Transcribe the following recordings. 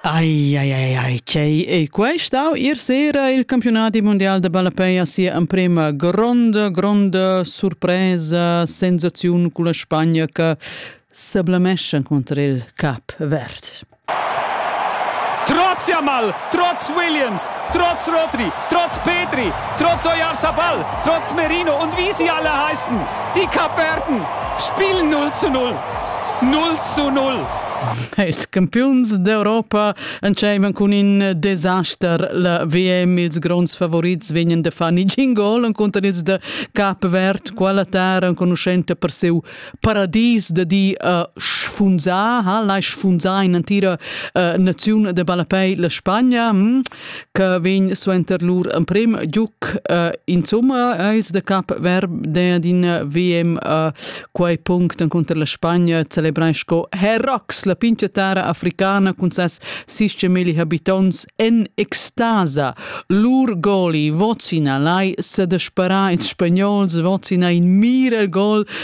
Ai, ai, ai, ai, chei, e quest'au ir sera il campionati mondial de ballapei a sia emprema gronda, gronda surpresa, sensaziun con la Spagna che seblamescia contro il Cap Verd. Trotz Jamal, trotz Williams, trotz Rodri, trotz Petri, trotz Oyarzabal, trotz Merino und wie sie alle heißen, die Kapverden spielen 0 zu 0. Null zu null! Ils campiuns d'Europa entscheivan cun in desaster. La VM, ils gronds favorits vegnan da far negin gol encunter ils da Cap Verd. Quella terra enconuschenta per siu paradis da di uh, sfunzar, ha lai sfunzar in entira uh, naziun da ballapei la Spagna. Hm? che vegn suenter lur emprem giuc. Uh, insomma, è il de cap verb d'in VM uh, quei punct encunter la Spagna celebrai sco Herrox, la pinchiatara africana cun ses 60.000 habitants en extasa. Lur goli, Vocina, lai se despara in spagnol, Vocina in mir el gol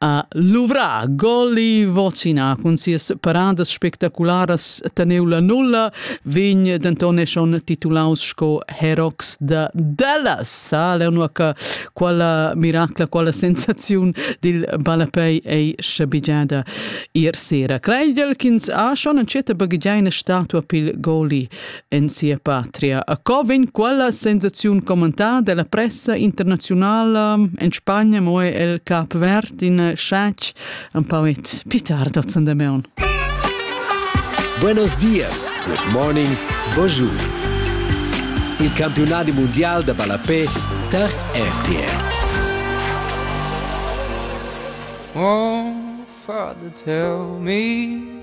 ha luvrà goli vocina cun sias paradas spectacularas teneu la nulla vegn denton e schon titulaus sco Herox da Dallas sa leu che quella miracla quella sensaziun dil ballapei ei schabigiada ir sera creigel ch'ins ha schon entscheta baghegiaina statua pil goli en sia patria. A co vegn quella sensaziun commentada dalla pressa internazionala en Spagna, mo è el cap verd in sciac un pauet pitar dozen de meon. Buenos dias, good morning, bonjour. Il campionat mondial de ballapé tar RTR. Oh, father, tell me